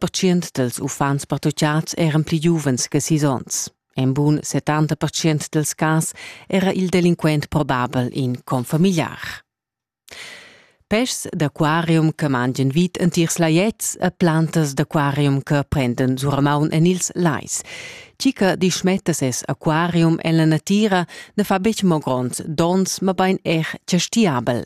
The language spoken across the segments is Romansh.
percient dels uffants pertuchats eran pli giuvens che sis onns. En bun 70% dels cas era il delinquent probabel in confamiliar. Peschs d'aquarium che mangian vit entirs laiets e plantas d'aquarium che prenden suramaun en ils lais. Chi che dischmetta ses aquarium en la natira ne fa betg mo grond dons, ma bein er chastiabel.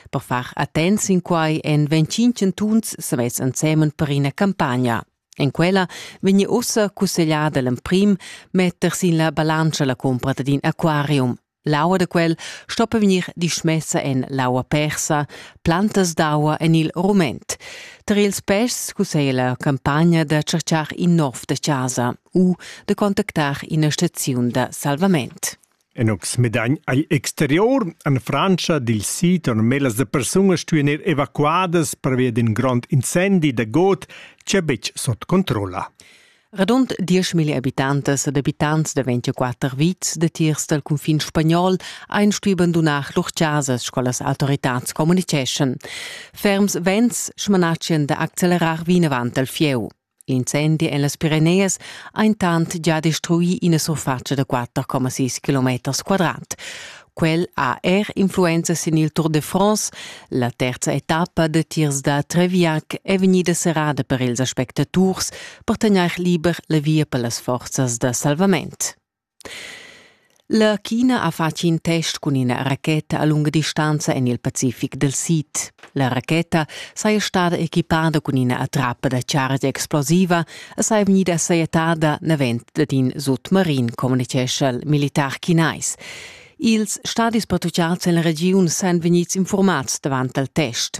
Per far attents in quai en 25 chantuns savess ensemen per ina campagna. En quella vegni ussa cussegliada l'emprim metter sin la balantscha la compra d'in aquarium. L'aua da quel stoppa vegnir dismessa en l'aua persa, plantas d'aua en il rument. Tar ils pests cusseglia la campagna da cercar in nov da chasa u da contactar ina staziun da salvament. En ox medagn ei exterior en Frantscha dil sid normelas da persunas stuein ir evacuadas pervia d'in grond incendi da got ch'ei buc sut controlla. Radund dieschmilli habitantas ed habitants da 24 vits datiers dal cunfin spagnol ein stui bandunar lur chasas, sco las autoritads communiceschan. Ferms vents smanatschan da accelerar vinavant al fieu. L'incendi en las Pireneas ha intant già destruì ina surfatscha da 4,6 km quadrat. Quel ha er influenza sin il Tour de France. La terza etappa de tirs da Treviac è vegnida serrada per ils aspectaturs per tegnair liber la via per las forzas da salvament. La China ha fatg in test cun ina racheta a lunga distanza en il Pacific dal sid. La racheta saja stada equipada cun ina attrappa da chargia explosiva e saja vegnida sajettada davent dad in sutmarin, communitgescha il militar chinais. Ils stadis patrucciads en la regiun san vegnids informads davant al test.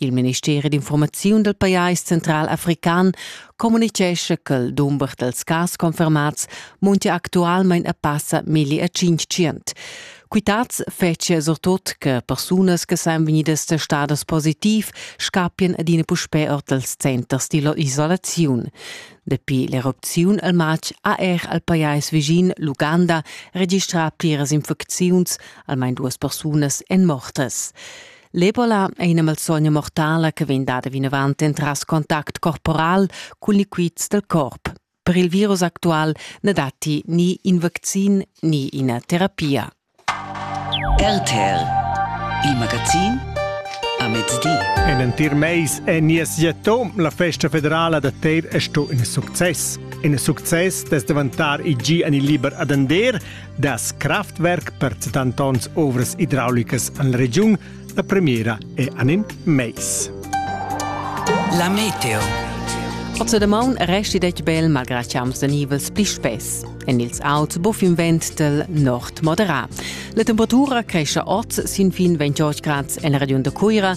Il ministeri d'informaziun dal pajais central african communitgescha ch'el dumber dals cas confermats muntia actualmain a passa milli e tschintschient. Quitads fetschia surtut che persunas che san vegnidas testadas positiv scappien ad ina puspè or dals centers dilla isolaziun. Dapi l'erupziun al matg ha er al pajais vischin l'Uganda registrà pliras infecziuns, almain duas persunas èn mortas. L'Ebola è ina malsogna mortala che vegn dada vinavant entras contact corporal cun liquids dal corp. Per il virus actual na datti ni in vaccin ni ina terapia. RTL, il magazin a mezdi. En entir mais è nies Jato, la festa federala da Teir, è sto in success. In success da davantar il gi an il liber ad Ander, Das Kraftwerk pertuttant onns ovras idraulicas en la regiun. La premiera è an in mais. La meteo. Oze de maun resti dec bel malgra chiams de nivels pli spess. En ils auts buff in ventel nord moderat. La temperatura cresce oz sin fin 28 grad en la regiun de Cuira,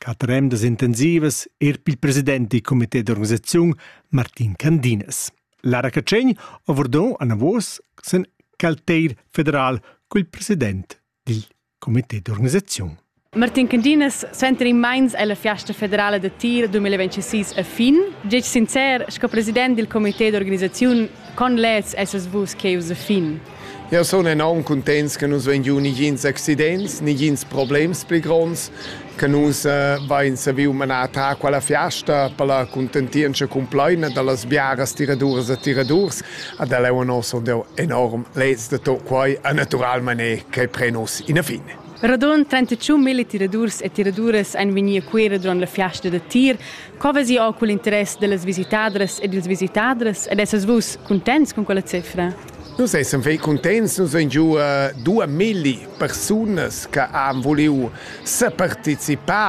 Quatter emdas intensivas er pil president dil comité d'organisaziun Martin Candinas. Lara Catschegn avordon anavos sen calteir federal col president dil comité d'organisaziun. Martin Candinas suenter in meins ella fiasta federala da tir 2026 a fin. Gec sincer, sco president dil comité d'organisaziun, con lez essas vus cheus a fin? Jau sun enorm cuntents che nus vein giu nigins accidents, nigins problems pli gronds, che nus eh, vein saviu manar ta quella fiasta per la contentientscha complaina dallas biaras tiraduras e tiradurs. Ad el è un osso enorm lez de tot quai a naturalmente che prenos in a fine. Radon 31 mille tiradurs e tiraduras ein vegnir a Cuera durant la fiasta da tir. Co vesi o cul interess dellas visitadras ed ils visitadras ed essas vus contents con quella cifra? Nus essan fei cuntents, nus vein giu uh, dua milli persunas che han vuliu separticipar